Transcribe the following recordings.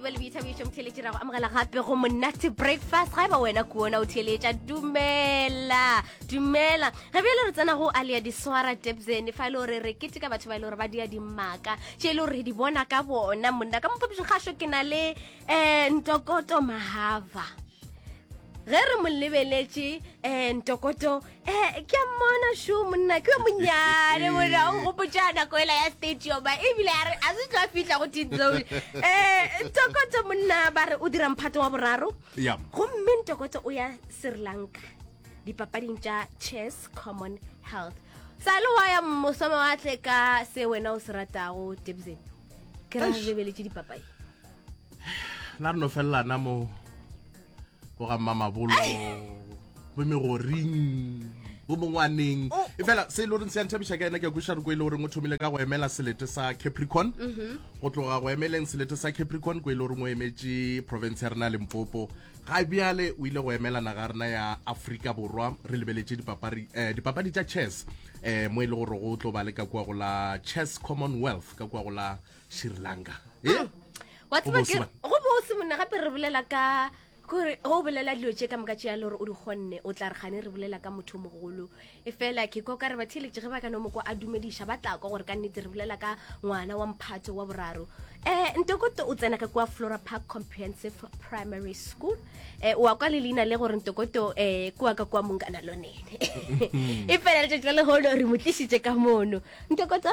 ba le boithabišo motheletši ra go amogela gape go monate breakfast ga e ba wena kuona o theletša dumela dumela ge bjale re tsena go alia diswara debsene fa e le gore re kete ka batho ba e le gore ba dia dimmaka tše e le gore re di bona ka bona monna ka mophapišo kgašo ke na le um ntokoto mahava ge re mo lebeletše um ntokoto Eh, ke a mmona sho monna ke yo monnyane mona o gopotsa nako ela ya stadiuma ebile a re a se tlo a fitlha go tinzone um eh, tokotso monna ba re o dira mphato wa boraro gomme ntokotso o ya sri lanka dipapading tša chess common health sa le wa ya mosome wa tle ka se wena o se ratago debson ke ra lebeletse dipapadi la re no felelana mo bo ga mmamabolo bo megoring bo mongwaneng oh. e fela se e le goreng se yanthabisa ka ena ke kweša re ko e le goreng o thomile ka go emela selete sa capricorn mhm. go tloga go emeleng selete sa capricorn ko e le goreng o emetse province ya rena limpopo ga bjale o ile go emela naga rena ya aforika borwa re lebeletse dipapadi eh, tša chess um mo e le gore go tlo ba le ka kua go la chess commonwealth ka kua go la sri lanka e wa tseba Go bose ke ba. go bose monna gape re bolela ka kore go o bolela dilo tše ka moka tše ya le gore o di kgonne o tla re gane re bolela ka motho o mogolo e fela ke kwa ka re batheletše ge ba ka no mo kwa a dumediša ba tla kwa gore ka nnete re bolela ka ngwana wa mphato wa boraro um ntokoto o tsena ka kwa flora park comprehensive primary school um wa kwa le leina le gore ntokoto um kua ka kwa monkana lonene e fela letšatši la lehono re mo tlišitše ka mono ntokoto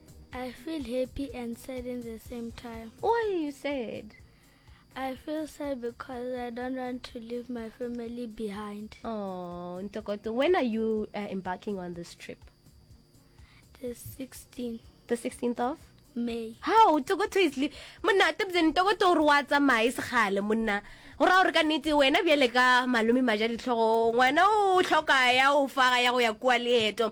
I feel happy and sad in the same time. Why are you sad? I feel sad because I don't want to leave my family behind. Oh, Ntokoto, when are you uh, embarking on this trip? The 16th. The 16th of? May. How? Ntokoto is leaving. Monna, tibze Ntokoto uri wa tsamaye segale monna. Ora ore ka nete wena bjale ka malome maja ditlhogo. Ngwana o tlhoka ya o faga ya go ya kwa leeto.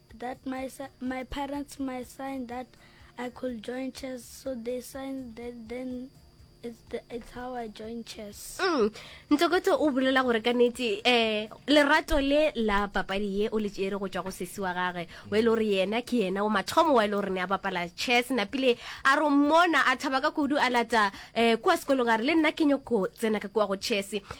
That my, my parents my sign that I could join chess, so they signed that then It's, the, it's how I join chess. Mm. Ntsokoto o bolela gore ka nete eh lerato le la papadi ye o le tsere go tswa go sesi wa gage o ile gore yena ke yena o mathomo wa ile gore ne a bapala chess na pile a ro mona a thaba ka kudu a lata eh kwa sekolong a re le nna ke nyoko tsena ka kwa go chess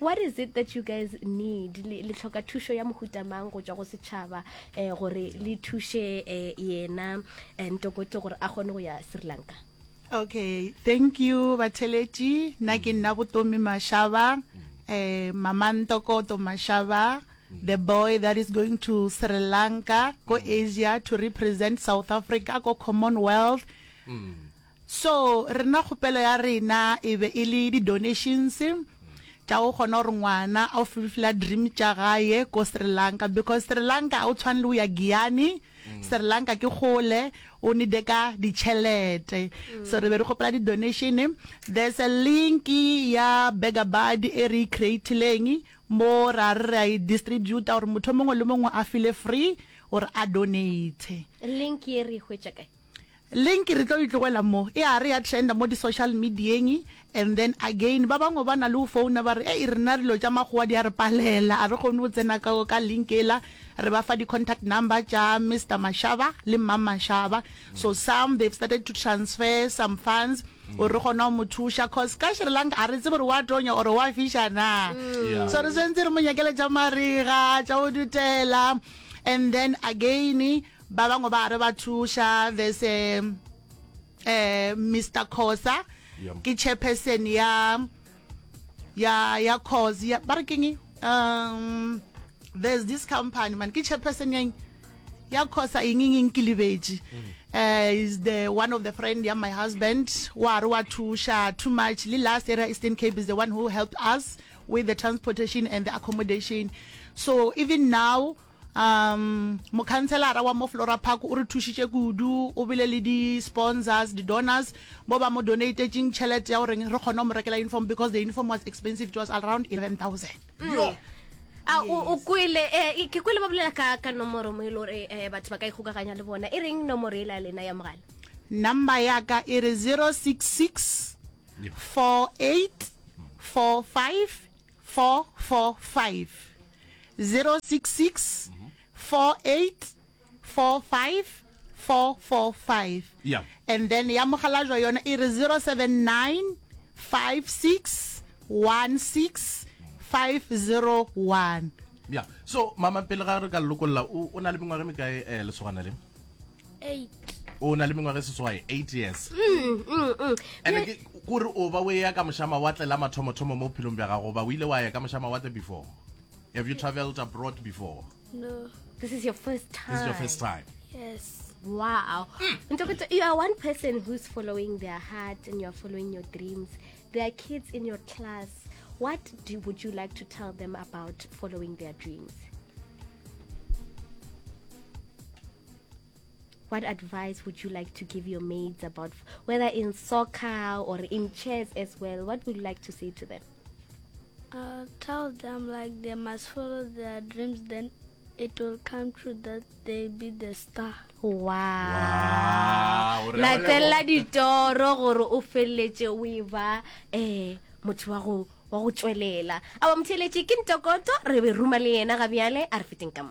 what is it that you guys need le tlhoka thušo ya mohuta mang go tšwa go setšhaba um gore le thuše um yena eh, ntokoto gore a kgone go ya sri lanka okay thank you batheletši nna ke nna botomi mashaba um mama ntokoto mashaba the boy that is going to sri lanka ko asia to represent south africa ko commonwealth mm. So rena kgopelo ya rena e be e le di donations tša go kgona gore ngwana a o fulfila dream tša gae ko Sri Lanka because Sri Lanka ga o tshwane le go ya Giyani, Sri Lanka ke kgole o need ka ditšhelete. So re be re kgopela di donation, there's a link ya Beggar Buddy e re e creatileng mo ra re re a e distributa gore motho o mongwe le mongwe a feel free gore a donate. Link ye re e hwetša kae? Link re tlo e tlogela mo. E a re ya trenda mo di social medieng and then again ba bangwe ba na le go founa ba re, Ei rena dilo tša makgowa di a re palela, a re kgone go tsena ka ka link yela. Re ba fa di contact number tša Mister Mashaba le Mma Mashaba. So some they've started to transfer some funds gore re kgone go mo thuša cause ka Sri Lanka a re tsebe gore wa tonya or wa fiša na. Yeah. So re swantse re mo nyakele tša marega, tša go dutela and then again Ba bangwe ba re ba thuša there's a eh, Mr Khosa Yep. ke chairperson ya ya ya cause ya ba re keng um there's this company man ke chairperson yang ya khosa eng eng eng ke lebetše uh, is the one of the friend ya my husband wa re wa thuša too much le last area eastern cape is the one who helped us with the transportation and the accommodation so even now um mokhanselara wa mo flora park o re thušitše kudu o bile le di-sponsors di-donors bo ba mo donatetšeng tšhelete ya gore re kgone go mo rekela uniform because the uniform was expensive it was around 11000 mm. a o kwele um ke kwele ba bolela ka ka nomoro mo e le gore um eh, batho ba ka ikgokaganya le bona e reng nomoro e la lena ya mogala number ya ka e re 066 48 45 and then ya mogalajwa yona e re 0795616501 yeah so mama pele ga re ka lokolla o na le mengwaga mekae um lesogana le o na le mengwaga e seswae eight years mm, mm, mm. ande ke kore o ba o eya ka mošamawatle la mathomothomo mo bophelong bja gago ba o ile wa ya ka mošamawatle before have you traveled abroad before no this is your first time this is your first time yes wow mm. you are one person who's following their heart and you're following your dreams there are kids in your class what do, would you like to tell them about following their dreams what advice would you like to give your mates about whether in soccer or in chess as well? What would you like to say to them? I'll uh, tell them like they must follow their dreams, then it will come true that they be the star. Wow. Latella ditoro gore o feleletse o e ba eh motho wa go wa go tswelela. Awa mtheletše ke ntokoto re be ruma le yena ga bjale a re feteng ka mo.